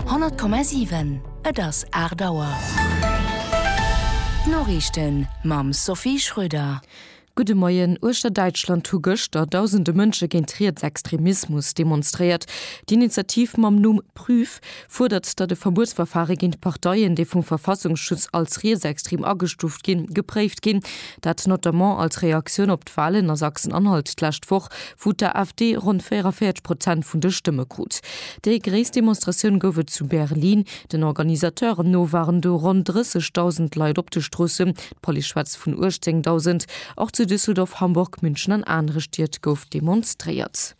100,7 Et ass 8 Auer. D'Noriichten mam Sophie Schröder. Gudde Moien. Uechter Däitschland hu gëschter dausende Mënsche géint Rietsextremismus demonstréiert. D'Initiativ mam Numm Prüf fuerdert, datt e Verbuetsverfare géint Parteien, déi vum Verfassungsschutz als rietsextrem agestuuft ginn, gepréift ginn. Dat notamment als Reaktioun op d'Walen a Sachsen-Anhalt d'lescht Woch, wou d'AfD ronn 44 Prozent vun de Stëmme krut. Déi gréisst Demonstratioun gouf et zu Berlin. Den Organisateuren no waren do ronn 30.000 Leit op de Stroossen, d'Police schwätzt vun 18.000. Och zu Düsseldorf, Hamburg, München an anere Stied gouf demonstréiert.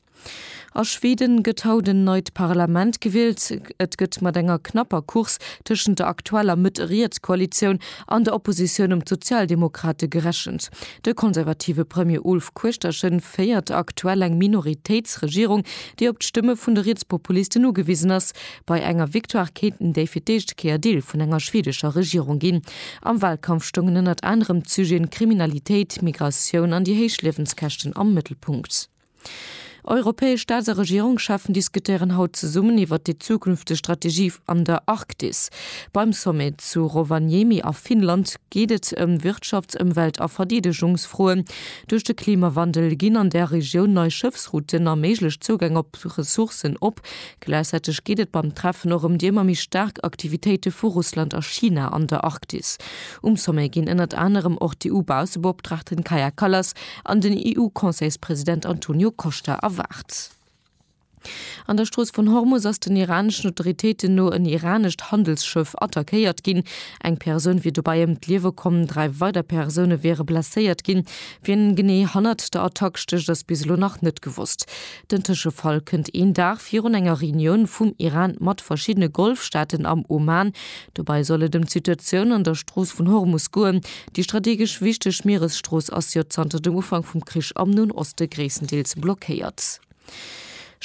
A Schweden gëtt haut en neit Parlament gewielt. Et gëtt mat enger knapper Course tëschent der aktueller Mëtt-Riets-Koalitioun an der Oppositioun un d'Sozialdemokrate gerechent. De konservative Premier Ulf Kuechterchen féiert aktuell eng Minoritéitsregierung, déi op d'Stëmme vun de Rietspopulisten ugewisen ass. Bei enger Victoire kéinten déi fir d'éischt Kéier Deel vun enger schwedescher Regierung ginn. Am Walkampf stoungen ënnert anerem d'Sujeten Kriminalitéit, Migratioun an déi héich Liewenskäschten am Mëttelpunkt. Europäesch Staats a Regierungscheffen diskutéieren haut zesummen iwwert déi zukünfteg Strategie an der Arktis. Beim Sommet zu Rovaniemi a Finnland geet et ëm Wirtschafts-, Ëmwelt a Verdeedegungsfroen. Duerch de Klimawandel ginn an der Regioun nei Schëffsrouten a méiglech Zougäng op Ressourcen op. Gläichzäiteg geet et beim Treffen och ëm déi ëmmer méi staark Aktivitéite vu Russland a China an der Arktis. Um Sommet ginn ënnert anerem och d'EU-Bausebopdrachtin Kaja Kallas An den EU-Conseilspresident Antonio Costa erwaart. An der Strooss vun Hormus ass den iraneschen Autoritéiten no en iranescht Handelsschëff attackéiert ginn. Eng Persoun wier dobäi ëm d'Liewe komm, dräi weider Persoune wiere blesséiert ginn. Wien genee hannert der Attack stécht, ass bis elo nach net gewosst. Den Tëschefall kënnt een Dag virun enger Reunioun vum Iran mat verschiddene Golfstaaten am Oman. Dobäi soll et ëm d'Situatioun an der Strooss vun Hormus goen. Déi strategesch wichteg Mieresstrooss ass jo zanter dem Ufank vum Krich am Noen Oste gréisstendeels blockéiert.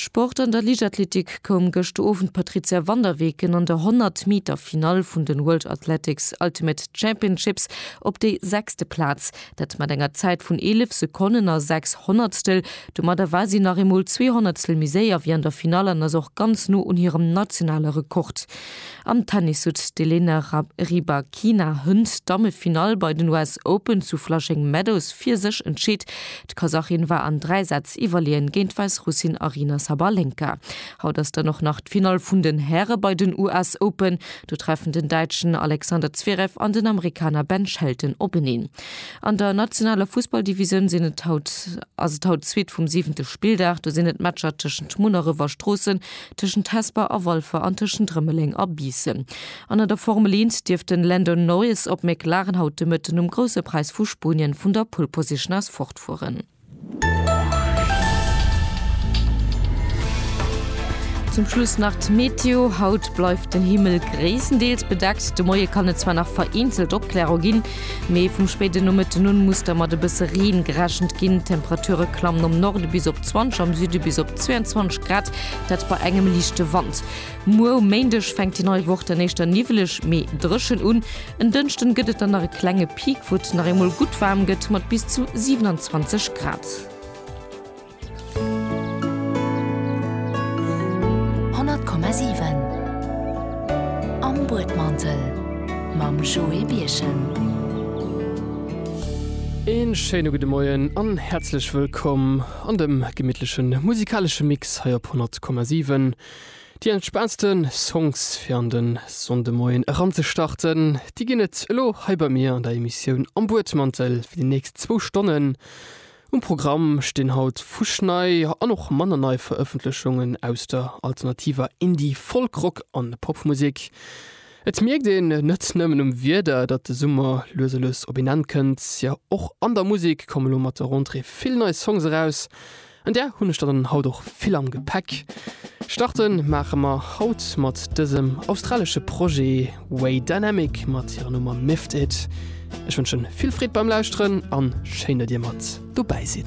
Sport An der Liichtathletik koum gëscht Owend d'Patrizia van der Weken an der 100 Meter Finall vun den World Athletics Ultimate Championships op déi sechste Plaz. Dat mat enger Zäit vun 11 Sekonnen a 6 Honnertstel. Domadder war si nach eemol zwee Honnertstel méi séier wéi an der Finall an ass och ganz no un hirem nationale Rekord. Am Tennis huet d'Elena Rybakina Hënt d'Dammefinall bei den US Open zu Flushing Meadows fir sech entscheet. D'Kasachin war an dräi Sätz iwwerleeën géint d'Wäissrussin Aryna Sabalenka. Haut ass dann och nach d'Finall vun den Häre bei den US Open. Do treffen den Däitschen Alexander Zverev an den Amerikaner Ben Shelton openeen. An der nationaler Fussballdivisioun sinn et haut ass et haut d'Suite vum siwente Spilldag. Do sinn et Matcher tëschent Munneref a Stroossen, tëschent Hesper a Walfer an tëschent Rëmeleng a Biissen. An an der Formel Eent dierft den Lando Norris op McLaren haut de Mëtten um Grousse Präis vu Spuenien vun der Pole Position aus fortfueren. Zum Schluss nach d'Meteo, Haut bleift den Himmel gréisstendeels bedeckt, de Moie kann et zwar nach vereenzelt Opklärung ginn, mee vum spéiden Nomëtten un muss da mat e bësse Reen gerechent ginn. D'Temperature klammen am Norde bis op 20, am Süde bis op 22 Grad, dat bei engem liichte Wand. Muer um Méindeg fänkt déi nei Woch dann éischter niwweleg, mee dréchen un. En Dënschden gëtt et dann nach e klenge Peak, wou et nach eemol gutt waarm gëtt mat bis zu 27 Grad. Een schéine gudde Moien an häerzlech wëllkomm an dem gemittlechen musikalesche Mix hei op 100,7. Déi entspaantste Songs fir an de Sonndemoien eranzestarten, déi ginn et elo hei bei mir an der Emissioun Am Buedmantel. Fir déi nächst zwou Stonnen um Programm stinn haut fuschnei an och manner nei Verëffentlechungen aus der alternativer Indie-, Folk-, Rock a Popmusek. Et mierkt een net nëmmen um Wieder, datt de Summer lues a lues op een Enn kënnt. Jo, och an der Musek komme lo mat der Rentrée vill nei Songs eraus. An där hunn ech dann haut och vill am Gepäck. Starte maache mer haut mat dësem australesche Projet Way Dynamic mat hirer Nummer Miffed It. Ech wënschen vill Freed beim Lauschteren an schéin, datt dir mat dobäi sidd.